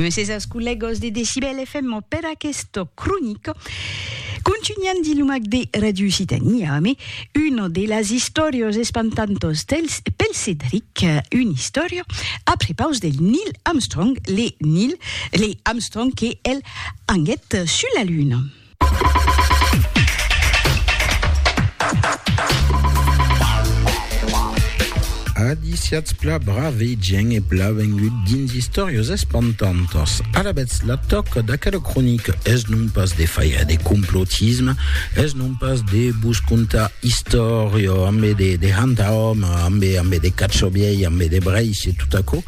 Mèses aos collegos de Decibel FM per aquesta cronica. Continuant di lumac de Radio Occitania, ame, una de las istòrias espantantas dels, pel Cedric, una istòria a prepaus del Neil Armstrong, le Neil, le Armstrong que el anguèt sus la Luna. Adiciats pla brave gent e pla vengut dins Istòrios espantantas. Alabètz la tòca d'aquela cronica es non pas de faire de complotisme, es non pas de vos contar istòria ambe de, de hanta hòme, ambe, ambe de catxobiei, ambe de breis e tot aquò,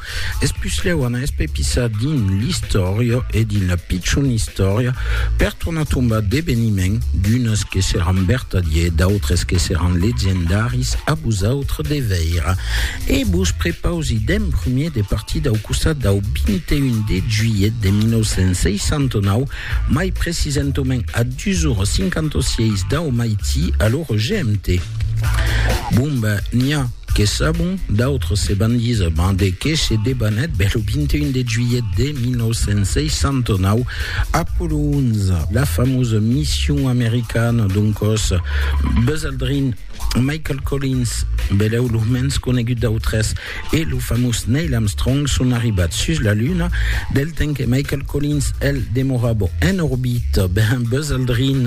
Es puslèu an espepissat dins l'istòria e dins la pichon istòria per tornar tombar d'eveniments, d'unes que seràn vertadiers, d'autres que seràn legendaris, a vosautres de veire. E vos prepausi d'en prumèr de partir dau costat dau 21 de juilhet de 1969, mai precisentament a 2h56 dau maití a l'ora GMT. Bon ben, n'i a! Que sabon, d'autres se van díser mas de qué se debanèt bèl lo 21 de juilhet de 1969, Apollo 11, la famosa mission americana d'un còs, Buzz Aldrin, Michael Collins, belèu lo mens conegut d'autres, e lo famós Neil Armstrong son arribats sus la Luna, del temps que Michael. Collins, el demorava en orbita ben Buzz Aldrin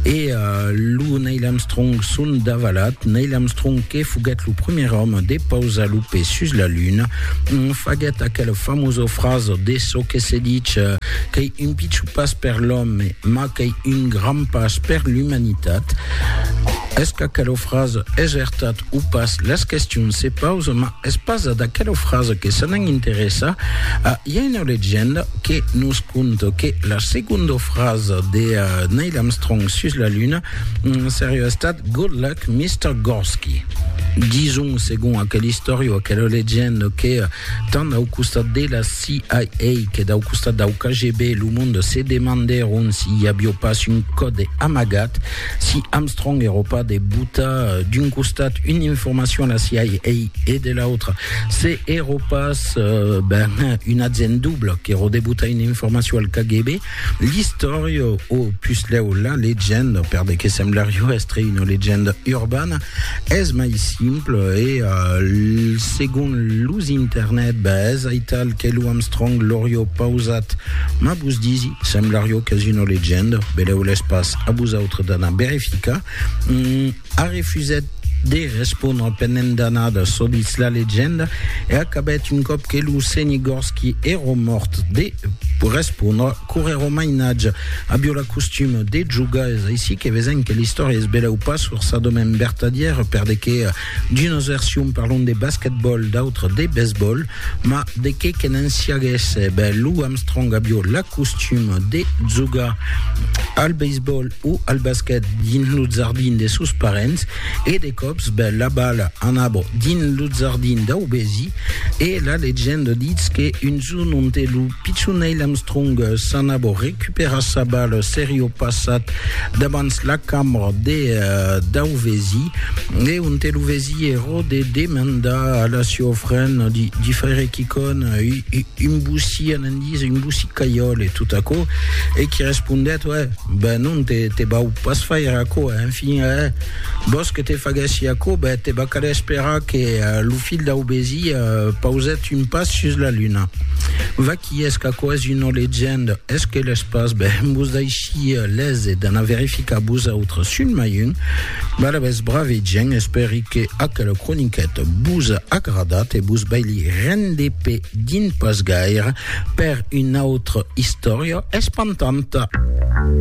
e lo Neil Armstrong son davalat. Neil Armstrong, que foguèt lo primièr òme de pausar lo pè sus la Luna, faguèt aquela famosa frasa de çò que se ditz qu'ei un pichon pas per l'òme, mas qu'ei un grand pas per l'umanitat. Es qu'aquela frasa es vertat o pas? Las questions se pausan, mas Es pas d'aquela frasa que se n'an interessat, i a una legenda que nos conta que la segonda frasa de Neil Armstrong sus la Luna seriá estat Good luck, Mister Gorsky. Dison, segon aquela istòria o aquela legenda, que tant dau costat de la CIA que dau costat dau KGB, lo monde se demandèron si i avió pas un còde amagat Si Armstrong Europa de buta d'un costat una informacion a la CIA e de l'autre, se Europas euh, ben, un agent double que rodebuta una informacion al KGB, l'istòria o puslèu la legenda, per de que semblaria estre una legenda urbana, es mai simple e euh, segon los internet, ben, es aital que lo Armstrong l'auria pausat, ma vos disi, semblaria qu'es una legenda, beleu l'es pas. a vosautres d'anar verificar, mm, a refusèt de respondre penent d'anada çò ditz la legenda e acabèt un còp que lo senhi Gorski èro mòrt de respondre corrèro mainatge avió la costuma de jogar es aicí que vesèm que l'istòria es belèu pas forçadament vertadièra per de que D'unas versions parlon de basquetbòl, d'autras de besbòl, ma de qué que ne'n siaguèsse, ben Lou Armstrong avió l'acostum de jogar al beisbòl o al basquet dins lo jardin de sos parents e de còps ben la bala anava dins lo jardin dau vesi e la legenda ditz que un jorn onte lo Pichon Neil Armstrong s'anava recuperar sa bala serio passat davans la cambra de Dauvesi e onte lo vesi ero de demandar a la sieu fren di faire quicon un boussi a n'en dise un boussi caiol e tot aquo e qui respondèt uè ben non te vau pas faire aquo en fin eh vos que te faguessi aquo ben te va caler esperar que lo filh Dauvesi pausèt Son pas sus la luna. Vaquí es qu'aquò's una legenda, es que l'es pas, ben, vos daishí lese, d'anar verificar vosautres, son mai un. Balabès brave gent, espèri que aquela croniqueta vos a agradat e vos vai li rende pe dins pas gaire per una autra istòria espantanta.